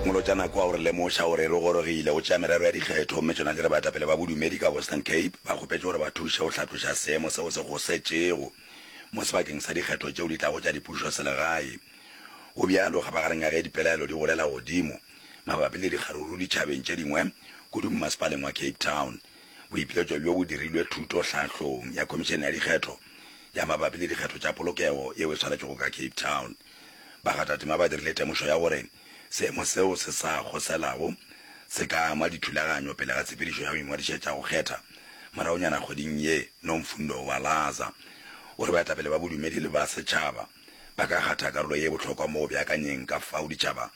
Molotšana kwa o re lemoša gore re gorogile go tšea merero ya dikgetho mme tšona di re baetapele ba bodumedi ka Western Cape ba kgopetše gore ba thuše go hlatloša seemo seo se gosetšego mo sebakeng sa dikgetho tšeo di tlago tša dipušoselegae. Go bjalo ga magareng ga ge dipelaelo di golela godimo mabapi le dikgaruru ditšhabeng tše dingwe kudu mmasepaleng wa Cape Town, boipiletšo bjo bo dirilwe thuto hlahlong ya Khomišene ya Dikgetho ya mabapi le dikgetho tša polokego yeo e swanetšwego ka Cape Town. Bakgathatema ba dirile temošo ya gore seemo seo se sa kgoselago se ka ama dithulaganyo pele ga tshepedišo ya go ingwadišetša go kgetha moragonyana kgweding ye. Nomfundo Walaza o re baetapele ba bodumedi le ba setšhaba ba ka kgatha karolo ye bohlokwa mo go beakanyeng ka fao ditšhaba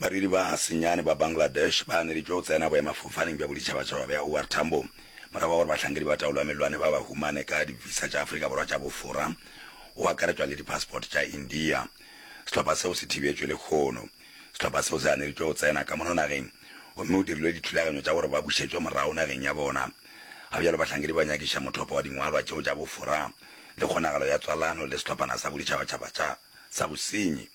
Badudi ba senyane ba Bangladesh ba aneditšwe go tsena boemafofaneng bja boditšhabatšhaba bja OR Tambo morago ga gore bahlankedi ba taolo ya mellwane ba ba humane ka di-visa tša Afrika Borwa tša bofora, go akaretšwa le di-passport tša India. Sehlopha seo se thibetšwe lekgono. Sehlopha seo se aneditšwe go tsena ka mono nageng gomme go dirilwe dithulaganyo tša gore ba bušetšwe morago nageng ya bona. Ga bjalo bahlankedi ba nyakiša mothopo wa dingwalwa tšeo tša bofora le kgonagalo ya tswalano le sehlophana sa boditšhabatšhaba tša sa bosenyi.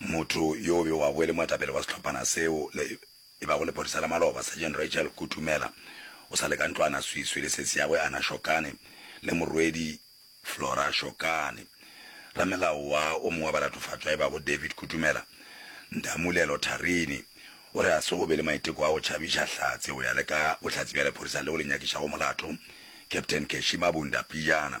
Motho yo o bewago e le moetapele wa sehlophana seo le e bago lephodisa la maloba, Sergeant Rachel Kutumela, o sa le ka ntlwana swiswi le sesi ya gwe Anna Shokane le morwedi Flora Shokane. Ramelao wa o mongwe wa balatofatšwa e bago David Kutumela, Ntamulelo Tharini, o re ga se go be le maiteko a go tšhabiša Hlatse go ya le ka bohlatse bja lephodisa leo le nyakišago molato, Captain Keshima Bunda Pijana.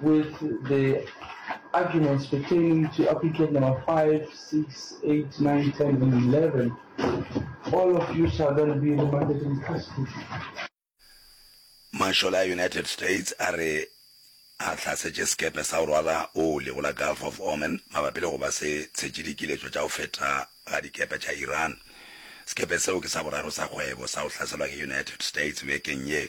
with the arguments pertaining to applicant number 5, 6, 8, 9, 10, and 11. All of you shall then be remanded in custody. Mashola a United States a re a hlasetše sekepe sa go rwala oli go la Gulf of Oman mabapi le go ba se tshetše dikiletšo tša go feta ga dikepe tša Iran. Sekepe seo ke sa boraro sa kgwebo sa go hlaselwa ke United States bekeng ye.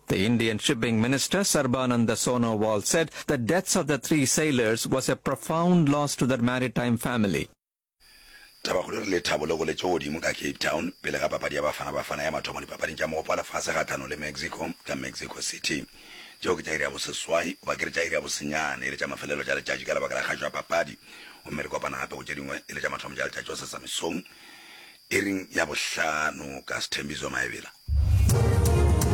The Indian Shipping Minister Sarbananda Sonowal said the deaths of the three sailors was a profound loss to their maritime family. Tabakgolo re le thabo le go le tšo godimo ka Cape Town pele ga papadi ya Bafana Bafana ya mathomo Dipapading tša Mogopo wa Lefase kgahlano le Mexico ka Mexico City. Tšeo ke tša iri ya boseswai goba ke re tša iri ya bosenyane e le tša mafelelo tša letšatši ka lebaka la kgašo ya papadi gomme re kopana gape go tše dingwe e le tša mathomo tša letšatši go sesa mesong iring ya bohlano ka Sthembiso Maebela.